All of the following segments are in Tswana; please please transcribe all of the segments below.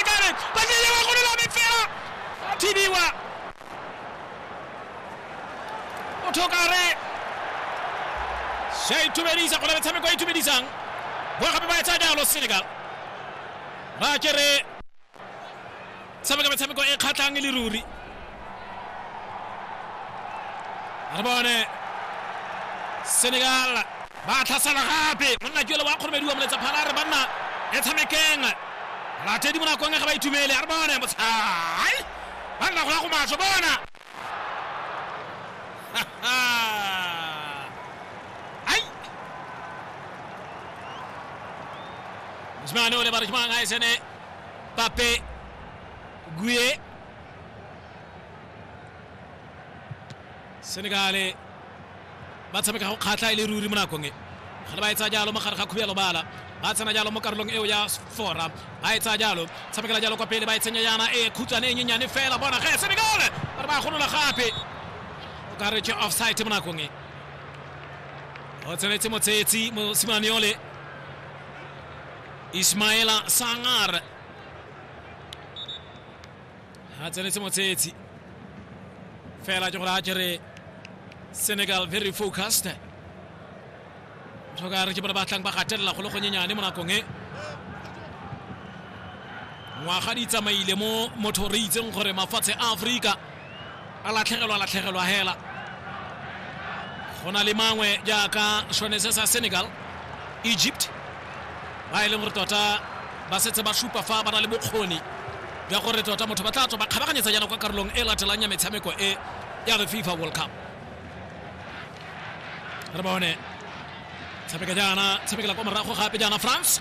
Garrett. Ba se lewa go lola mefela. Thibiwa. O thokare. Se a itumedisa go na metshameko e itumedisang. Bo gape ba etsa jalo Senegal. Ba kere tshameka metshameko e kgatlhang e le ruri. re bone senegal ba tlhasela gape monna ke ole wa kgoromedi wa moletsa phala re banna e tshamekeng latedi mo nakong e ga ba itumele a re bone motshai ba nna gola go maso bona ai mosimane o le ba re ke mang a e sene pape gue senegale ba tshameka go kgatlha e le ruri mo nakong e ga le ba e tsaya jalo mo gare ga khuya lobala ba tsena jalo mo karolong eo ya fora ba e tsaya jalo tshamekela jalo kwa pele ba e tsenya yana e khutshwane e nyenyane fela bona ge senegale ba re ba golola gape o ka re ke offside mo nakong e o tsenetse motsetsi mosimane yole ismaela sangar a tsenetse motshetsi fela ke gore a kere senegal very focused tlhoka re ke bone ba tlang ba gatelela go le gonyenyane mo nakong e ngwaga di tsamaile mo motho re itseng gore mafatshe a aforika a latlhegelwa latlhegelwa hela go na le mangwe jaaka sone se sa senegal egypt ba e leng gore tota ba setse ba supa fa ba na le bokgoni jwa gore tota motho ba tla tswa ba kgabaganyetsa jaana kwa karolong e latelang ya metshameko e ya the fifa world cup re bone tshameka jaana tshamekela kwa morago gape jaana france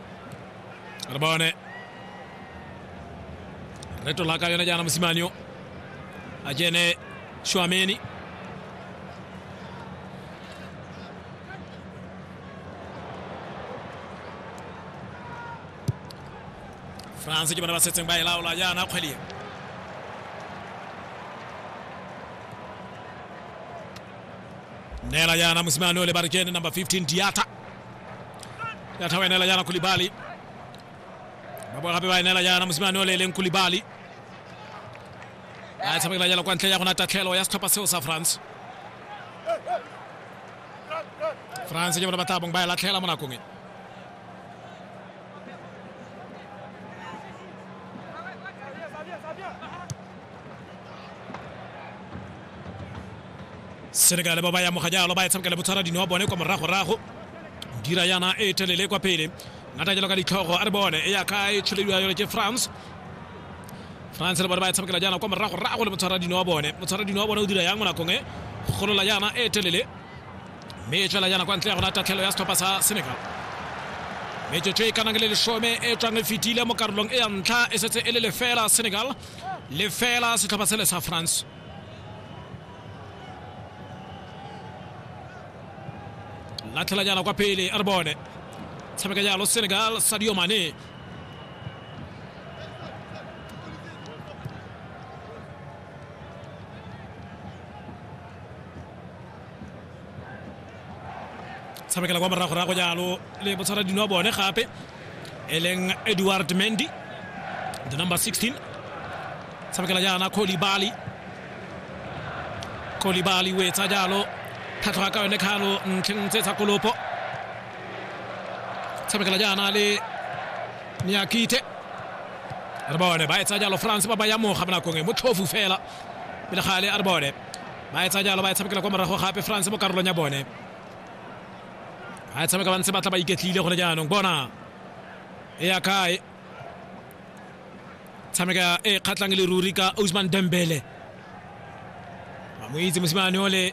re bone re tola ka yone jaana mosimane yo a kene shwameni france ke bone ba setseng ba e laola jaana kgwedi neela jaana mosimane o le ba re kene number 15 diata ya thawa ene la yana kulibali ba boa gape ba ene la yana mosimane o leleng kulibali a tshamekela jalo kwa ntle ya gona tatlhelo ya setlhopha seo sa france france ke bona ba tabong ba e latlhela mo nakong e senegale ba ba ya moga jalo ba e tshamekela botshwara dino wa bone kwa moragorago dira yana e telele kwa pele ngata jalo ka ditlhogo a re bone e ya ka e tsholediwa yone ke france france le bone ba e tshamekela jaana kwa moragorago le motshwara dino wa bone motshwara dino wa bone o dira yang mo nakong e golola yana e telele mme e tswela yana kwa ntle ya gona tatlhelo ya setlhopha sa senegal metsotso e kanang le lesome e tswang e fetile mo karolong e ya ntlha e setse e le lefela senegal lefela setlhopha sele sa france latlhela jana kwa pele a re bone tshameka jalo senegal sadio mane tshamekela kwa moragorago jalo le botshwara dino wa bone gape e leng edward mendy the number 16 tshamekela jaana kolibali kolibali o etsa jalo tlhatlhoga ka yone kgalo ntlheng tse tsa kolopo tshamekela jaana le niakite re bone ba etsa jalo france ba ba ya moga mo nakong e motlhofu fela pele gale a re bone ba etsa jalo ba e tshamekela kwa morago gape france mo karolong ya bone a tshameka ba ntse ba tla ba iketlile gone jaanong bona e ya kae tshameka e kgatlhang le ruri ka osman dembele ba mo itse mosimane o le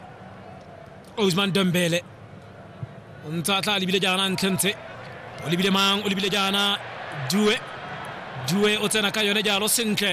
osman dembele o ntse a tla a lebile jaana ntlhentshe o lebile mang o lebile jaana due due o tsena ka yone jalo sentle